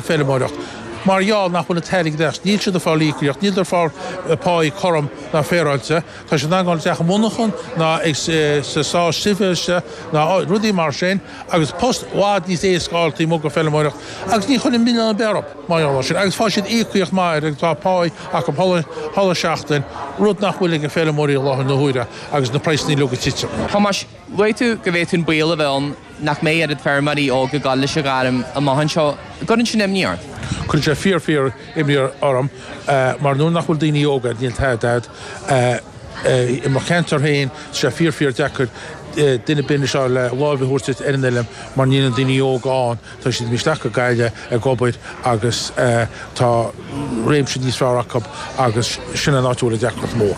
feirmeoireacht. Mar gheall nach bhfuil an t-airgead acu, níl siad ag fáil íocaíocht, níl siad ag fáil páí cothrom ná féaráilte, tá siad ag dul isteach monarchan ná ag sa sá sibhéise ná rudaí mar sin agus post i bhfad níos éasca ná feirmeoireacht agus ní chuirfinn milleán ar bith orthu mar gheall ar sin agus faigheann siad íocaíocht maith ar agus tá páí acu chuile seachtain, rud nach bhfuil ag na feirmeoirí i láthair na huaire agus na praghsanna uilig ag titim. Thomáis, luaigh tú go bhféadfadh baol a bheith ann nach mbeidh oiread feirmeoirí óga ag dul leis an ngairm amach anseo, an gcuireann sin imní ort? Cuireann sé fíor fíor imní orm mar nuair nach bhfuil daoine óga, níl tada agat i mo cheantar féin, tá sé fíor fíor deacair duine binn a seo le láimh a thabhairt duit ar an oileán mar níl na daoine óga ann, tá siad imithe isteach go Gaillimh ag obair agus tá réimse níos fearr acu agus sin an áit a bhfuil an deacracht mór.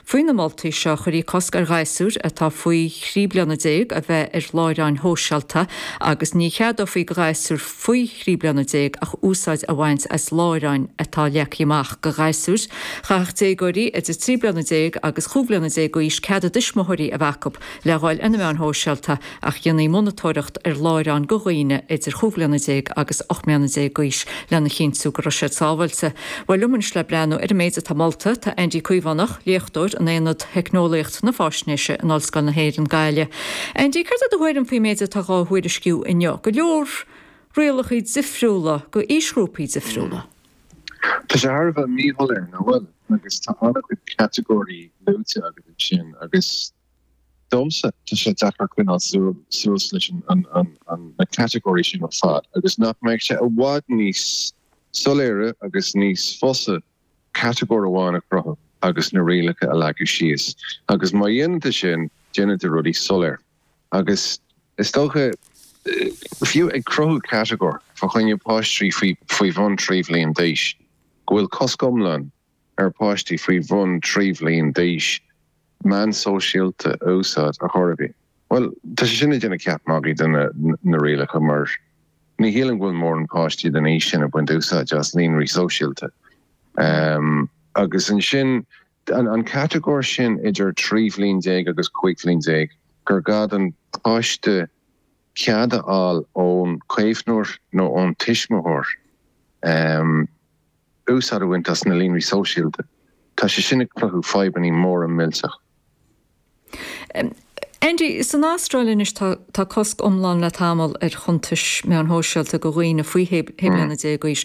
Faoi na moltaí seo chuirfí cosc ar ghasúir atá faoi thrí bliana déag a bheith ar láithreáin shóisialta agus ní cheadófaí do ghasúir faoi thrí bliana déag ach úsáid a bhaint as láithreáin atá leagtha amach do ghasúir. Chaithfeadh déagóirí idir trí bliana déag agus chúig bliana déag d'aois cead a dtuismitheoirí a bheith acu. Le dhul ar na meáin shóisialta ach dhéanfaí monatóireacht ar láithreáin do dhaoine idir chúig bhliana déag agus ocht mbliana déag d'aois lena chinntiú go raibh siad sábháilte. Bhuel, liom anois le breathnú ar an méid atá molta, tá Andy Caomhánach, léachtóir in aonad Theicneolaíocht na Faisnéise in Ollscoil na hÉireann, Gaillimh. Andy, céard é do thuairim faoin méid atá dhá thuairisciú inniu? Go leor rialacha difriúla do aoisghrúpaí difriúla. Tá sé thar a bheith míshoiléir nach bhfuil agus tá an-chuid catagóirí luaite agat ansin agus domsa tá sé deacair coinneáil suas leis na catagóirí sin ar fad agus nach mbeadh sé i bhfad níos soiléire agus níos fosa catagóir amháin a chruthú agus na rialacha a leagan síos agus má dhéantar sin déanann sé rudaí soiléir. agus is dócha fiú ag cruthú catagóir fá choinne páistí faoi bhun trí bhliain d'aois, go bhfuil cosc iomlán ar pháistí faoi bhun trí bhliain d'aois meáin sóisialta a úsáid ar chor ar bith. Bhuel, tá sé sin ag déanamh ceap magaidh de na rialacha mar ní shílim go bhfuil mórán páistí den aois sin ag baint úsáid as líonraí sóisialta agus ansin an catagóir sin idir trí bhliain déag agus cúig bhliain déag gur gá don pháiste cead a fháil ón caomhnóir nó ón tuismitheoir úsáid a bhaint as na líonraí sóisialta. Tá sé sin ag cruthú fadhbannaí móra millteach. Andy, san Astráil anois tá cosc iomlán le tamall ar chuntais meáin shóisialta go dhaoine faoi shé bliana déag d'aois.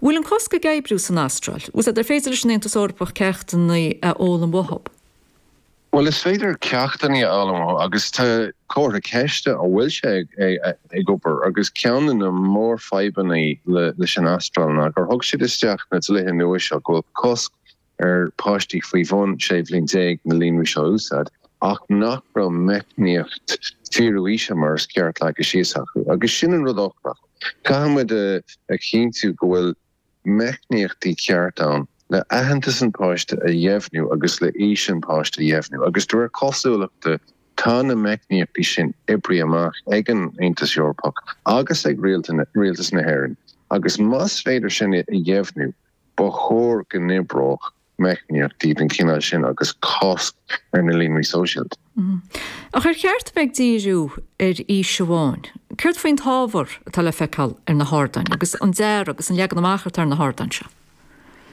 Bhfuil an cosc ag oibriú san Astráil? Agus ar féidir leis an Aontas Eorpach ceachtanna a fhoghlaim uathu? Bhuel, is féidir ceachtanna a fhoghlaim uathu agus tá comhartha ceiste ann an bhfuil sé ag obair. Agus ceann de na mórfhadhbanna leis an Astráil ná gur thug siad isteach na dlíthe nua seo go bhfuil cosc ar páistí faoi bhun 16 bhliain na líonraí seo a úsáid ach nach raibh meicníocht fíorú aoise mar is ceart leagtha síos acu agus sin an rud eochrach. Caithfidh muid a chinntiú go bhfuil meicníochtaí ceart ann le aitheantas an pháiste a dheimhniú agus le aois an pháiste a dheimhniú agus de réir cosúlachta tá na meicníochtaí sin oibrithe amach ag an Aontas Eorpach agus ag Rialtas na hÉireann agus más féidir sin a dheimhniú Ba chóir go n-oibreodh meicníochtaí den chineál sin agus cosc ar na líonraí sóisialta. Ach ar cheart a bheith ag díriú ar aois amháin? Céard faoin t-ábhar atá le feiceáil ar na hardáin agus an dearadh agus an leagan amach atá ar na hardáin seo?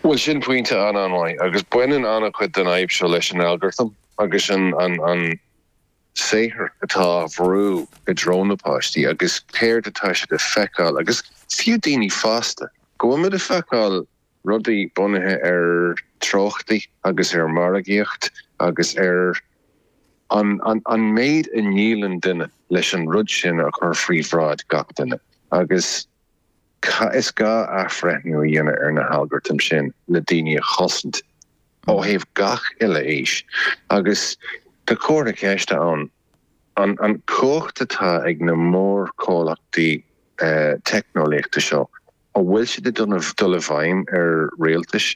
Bhuel, sin pointe an-an-mhaith agus baineann an-chuid den fhadhb seo leis an algartam agus an. saothar atá á bhrú i dtreo na páistí agus céard atá siad a feiceáil agus fiú daoine fásta, go bhfuil muid a feiceáil rudaí bunaithe ar treochtaí agus ar mhargaíocht agus ar an an méid a ndíolann duine leis an rud sin a chur faoi bhráid gach duine agus. Cad is gá athbhreithniú a dhéanamh ar na halgartaim sin le daoine a chosaint ó thaobh gach uile aois agus tá comhartha ceiste ann an an cumhacht atá ag na mórchomhlachtaí teicneolaíochta seo a bhfuil siad ag dul i bhfeidhm ar rialtais